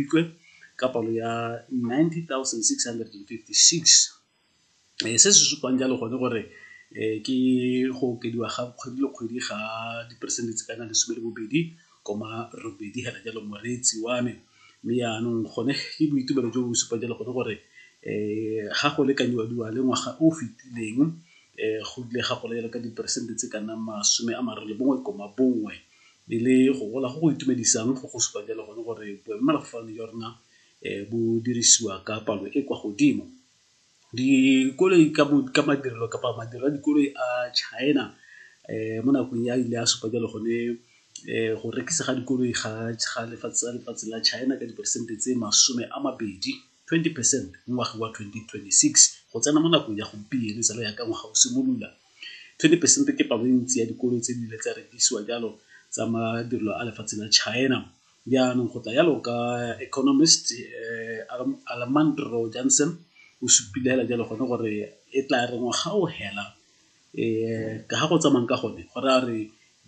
Mopitlwe ka palo ya 90,656. Eh, se se supang jalo gone gore eh, ke go okediwa ga kgwedi le kgwedi ga diperesente tse kana lesome le bobedi koma robedi hela jalo moreetsi wa me mme yaanong gone ke boitumelo jo bo supang jalo gone gore eh ga go lekanyiwa diwa le ngwaga o fetileng eh go ile ga gola jalo ka diperesente tse ka nnang masome a mararo le bongwe koma bongwe e le go gola go go itumedisang go go supa jalo gone gore boemelafofane jwa rona um bo dirisiwa ka palo e kwa godimo dikoloi ka madirelo kapa madirelo a dikoloi a China um mo nakong ya ile a supa jalo gone um go rekisa ga dikoloi ga lefatshe la China ka diperesente tse masome a mabedi. 20 percent mo ngwageng wa 2026 go tsena mo nakong ya gompieno jalo yaka ngwaga o simolola. 20 percent ke palo e ntsi ya dikolo tse di ile tsa rekisiwa jalo tsa madirelo a lefatshe la China. Jaanong go tla yalo ka economist eh, Almandro Jansen o supile hela jalo gone gore e tla re ngwaga o hela Ga go tsamayang ka gone go raya gore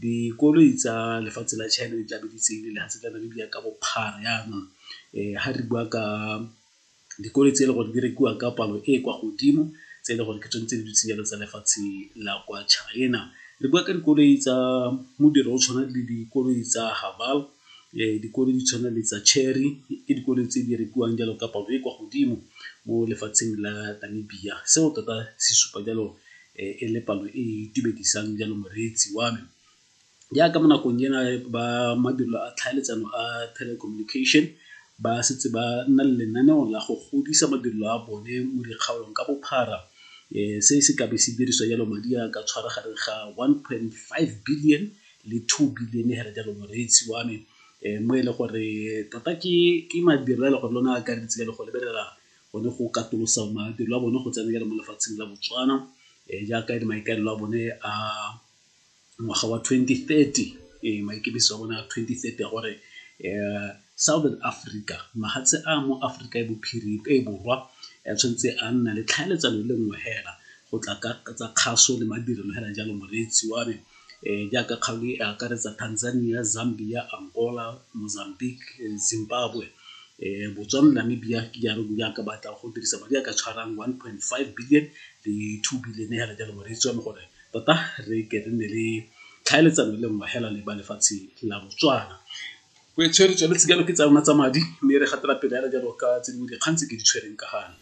dikoloi tsa lefatshe la China di tlabe di tseile lefatshe la Namibia ka bophara yanong ga re bua ka dikoloi tse e le gore di rekiwa ka palo e e kwa godimo tse e le gore ke tsone tse di dutse jalo tsa lefatshe la kwa China. Re bua ka dikoloi tsa modiro o tshwana le dikoloi tsa . Dikoloi di tshwana le tsa Chery ke dikoloi tse di rekiwang jalo ka palo e kwa godimo mo lefatsheng la Namibia. Seo tota se supa jalo e le palo e e itumedisang jalo moreetsi wa me. Jaaka mo nakong ena ba mabelo a tlhaeletsano a telecommunication ba setse ba nna le lenaneo la go godisa mabelo a bone mo dikgaolong ka bophara. Se se ka be se dirisa jalo madi a ka tshwaragane ga one point five billion le two billion hela jalo moreetsi wa me um mo e le gore tota ke madiro a le gore lone a akareditse jalo go lebelela bone go katolosa madiro a bone go tsena jalo mo lefatsheng la botswana um jaaka e le maikaelelo a bone a ngwaga wa 2030 um maikemiso a bone a 2030 ya gore um southern africa mahatshe a mo africa e bophirima e borwa ya tshwanetse a nna le tlhaeletsano le nngwe hela go tla ka tsa kgaso le madirelo hela jalo moreetsi wa me Jaaka kgaolo e akaretsa Tanzania, Zambia, Angola, Mozambique, Zimbabwe, Botswana le Namibia ke jalo di jaaka ba tla go dirisa madi a ka tshwarang one point five billion le two billion hela jalo mo re itse yone gore tota re ke re nne le tlhaeletsano le nngwe hela le ba lefatshe la Botswana. Go tshwere tsone tse jalo ke tsa rona tsa madi mme re gatela pele hela jalo ka tse dingwe dikgang tse ke di tshwereng ka gale.